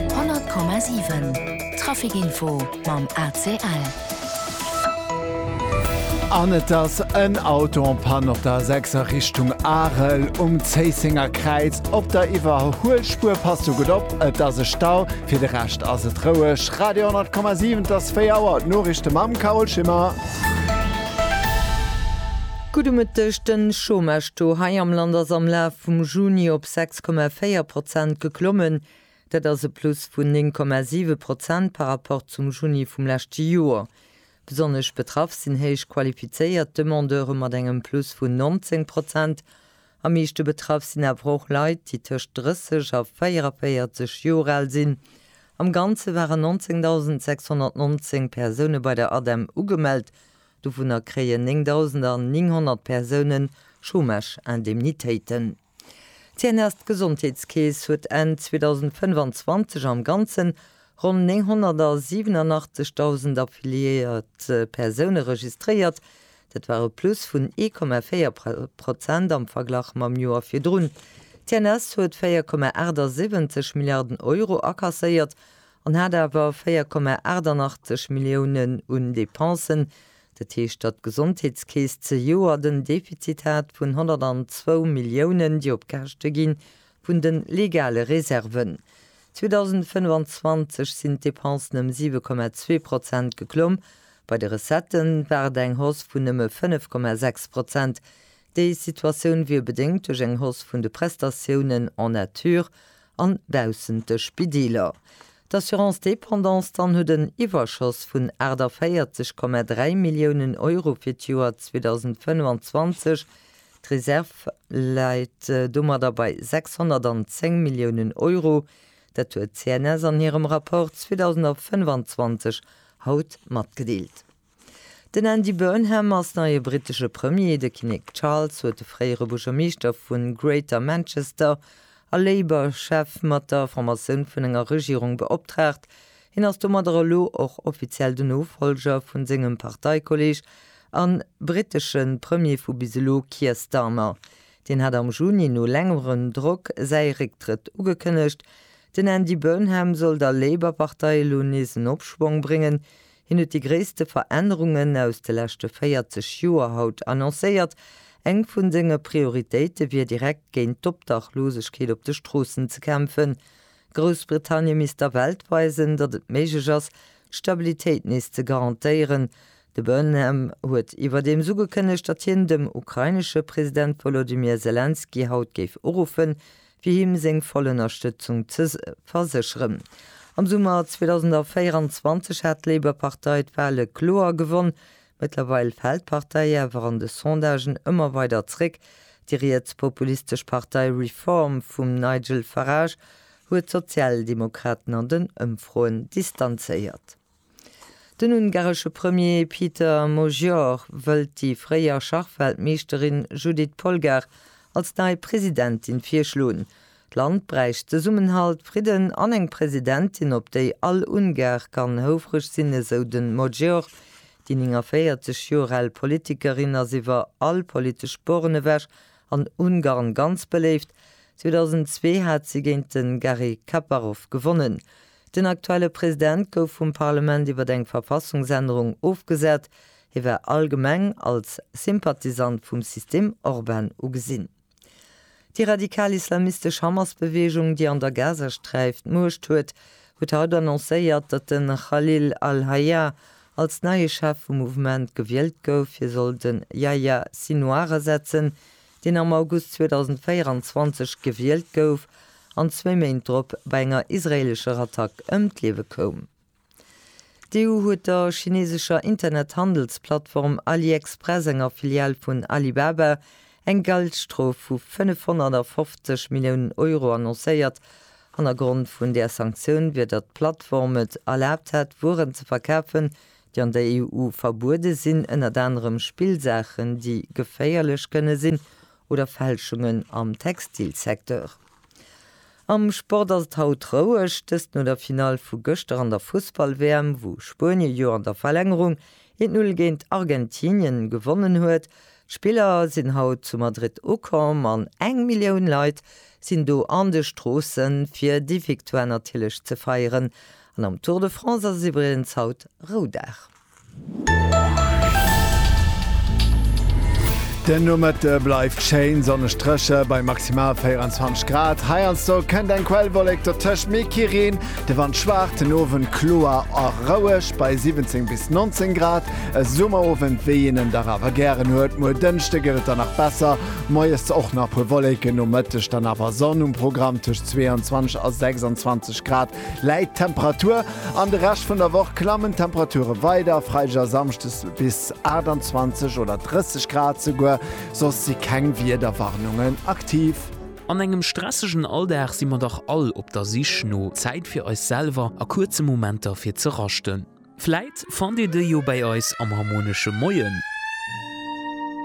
100,7 Trafic-Info mam ACL. An et ass en Auto en Panne op der A6 a Richtung Arel um Zéissenger Kräiz. Op der Iwwerhuelspuer passt do gutt op, et ass e Stau. Fir de Rescht ass et roueg. Radio 100,7, et ass 4 Auer. D'Noriichte mam Carole Schimmer. Gudde Mëtteg, Den Chômage-Taux hei am Land ass am Laf vum Juni op 6,4 8,4 Prozent geklommen, dat ass e Plus vun 9,7 Prozent par rapport zum Juni vum leschte Joer. Besonnesch betraff sinn héich qualifizéiert Demandeure mat engem Plus vun 19 Prozent. Am meeschte betraff sinn awer och Leit, déi tëscht 30 a 44 Joer al sinn. Am Ganze waren 19.619 Persoune bei der ADEM ugemellt, dovunner kréien 9.900 Persoune Chômage-Indemnitéiten. D'Tieners Gesondheetskeess huet Enn 2025 am Ganzen ronn 987.000 affiliéiert Persoune registréiert. Dat war e Plus vun 1,4 Prozent am Verglach mam Joer virdrun. D'Tieners huet 4,78 Milliarden Euro akasséiert an hat awer 4,88 Milliounen un Depensen, Dat heescht, datt d'Gesondheetskeess zejoert en Defizit hat vun 102 Milliounen, déi op Käschte gi vun de legale Reserven. 2025 sinn d'Depensen ëm 7,2 Prozent geklomm. Bei de Recettë war et eng Hausse vun nëmme 5,6 Prozent. Déi Situatioun wier bedéngt duerch eng Hausse vun de Prestatiounen en nature. an baussent de Spideeler. D'Assurance Dépendance dann huet en Iwwerschoss vun 48,3 Milliounen Euro fir d'Joer 2025. D'Reserv läit domadder bei 610 Milliounen Euro. Dat huet d'CNS an hirem Rapport 2025 haut matgedeelt. Den Andy Burnham ass neie brittesche Premier. De Kinnek Charles huet de fréiere Buergermeeschter vu Greater Manchester a Labour-Chef mat der Formatioun vun enger Regierung beoptraagt. Hien ass domadder elo och offiziell den Nofollger vu sengem Parteikolleeg a brittesche Premier vu bis elo Keir Starmer. Deen hat am Juni no längerem Drock säi Récktrëtt ugekënnegt. Den Andy Burnham soll der Labour-Partei elo nees en Opschwong bréngen. Hien huet déi gréisste Verännerungen aus de leschte 40 Joer haut annoncéiert. Eng vun senge Prioritéite wier direkt géint d'Obdachlosegkeet op de Stroossen ze kämpfen. Groussbritannie misst der Welt weisen, datt et méiglech ass, d'Stabilitéit nees ze garantéieren. De Burnham huet iwwerdeems ugekënnegt, datt hien dem ukrainesche President Wolodymyr Selenskyj haut géif uruffen, fir him seng voll Ënnerstëtzung ze versécheren. Am Summer 2024 hat d'Labour-Partei d'Wale kloer gewonn. Mëttlerweil fält d'Partei awer an de Sondagen ëmmer weider zréck. Déi riets-populistesch Partei Reform vum Nigel Farage huet d'Sozialdemokraten an den Ëmfroen distanzéiert. Den ungaresche Premier Peter Magyar wëllt déi fréier Schachweltmeeschterin Judit Polgár als nei Presidentin virschloen. D'Land bräicht Zesummenhalt, Fridden an eng Presidentin, op déi all Ungar kann houfreg sinn, esou de Magyar. Déi 49 Joer al Politikerin ass iwwer all politesch Born ewech an Ungarn ganz beléift. 2002 hat si géint de Garry Kaparov gewonnen. Den aktuelle President gouf vum Parlement iwwer eng Verfassungsännerung ofgesat. Hie war allgemeng als Sympathisant vum System Orban ugesinn. Déi radikal-islamistesch Hamas-Beweegung, déi an der Gazasträif d'Muecht huet, huet haut annoncéiert, datt de Khalil al-Hayya als neie Chef vum Mouvement gewielt gouf. Hie soll de Yahya Sinouar ersetzen, deen am August 2024 gewielt gouf an zwéi Méint drop bei enger israeelescher Attack ëm d'Liewe koum. D'EU huet der chineesescher Internethandelsplattform AliExpress, enger Filial vun Alibaba, eng Geldstrof vu 550 Milliounen Euro annoncéiert. Hannergrond vun där Sanktioun wier, datt d'Plattform et erlaabt hätt, Wueren ze verkafen, déi an der EU verbuede sinn, ënnert anerem Spillsaachen, déi geféierlech kënne sinn, oder Fälschungen am Textilsecteur. Am Sport ass et haut roueg, dëst no der Finall vu gëschter an der Fussball-WM, wou Spuenie jo an der Verlängerung 1-Null géint Argentinien gewonnen huet. D'Spiller sinn haut zu Madrid ukomm an eng Millioun Leit sinn do an de Stroossen, fir déi Victoire natierlech ze feieren. An am Tour de France ass et iwwregens haut Roudag. Den Nomëtte bleift schéin sonneg dréche bei maximal 24 Grad. Heiansdo kënnt eng Quellwollék dertëscht, mee kee Reen. De Wand schwaacht, den Owend kloer a roueg bei 17 bis 19 Grad. E Summerowend, wéi een en dach awer gären huet. Muer Dënschde gëtt et dann nach besser, moies och nach puer Wolléiken, nomëtteg dann awer Sonn um Programm tëscht 22 a 26 Grad. Läit d'Temperatur. An de Rescht vun der Woch klammen d'Temperature weider, Freideg a Samschdes bis 28 oder 30 Grad souguer, soss si keng Wiederwarnungen aktiv. An engem stressegen Alldag si mer dach all op der Sich no Zäit fir eis selwer a kuerze Momenter fir ze raschten. Vläit fannt Dir déi jo bäi eis am Harmonesche Moien.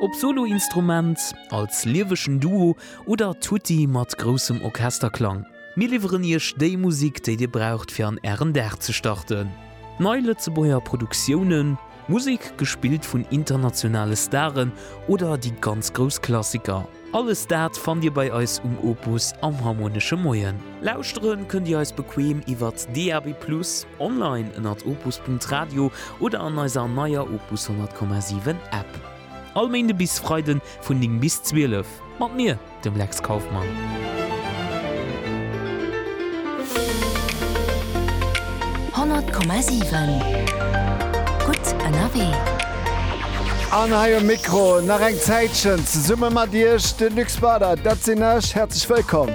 Ob Soloinstrument, als liewegen Duo oder tutti mat groussem Orchesterklang, mir liwweren Iech déi Musik, déi Dir braucht fir an Ären Dag ze starten. Nei Lëtzebuerger Produktiounen, Musek gespillt vun internationale Staren oder déi ganz grouss Klassiker. Alles dat fannt Dir bei eis um Opus am Harmonesche Moien. Lauschteren kënnt Dir eis bequem iwwert DAB+, online ënnert opus.radio oder an eiser neier Opus 100,7 App. All Méinde bis Freide vun 9 bis 12 mat mir, dem Lex Kauffmann. Honnert Komma siwen, gutt ënnerwee. An hei um Mikro nach eng Zäitchen zesumme mat Iech de Luc Spauder, dat sinn ech. Häerzlech wëllkomm!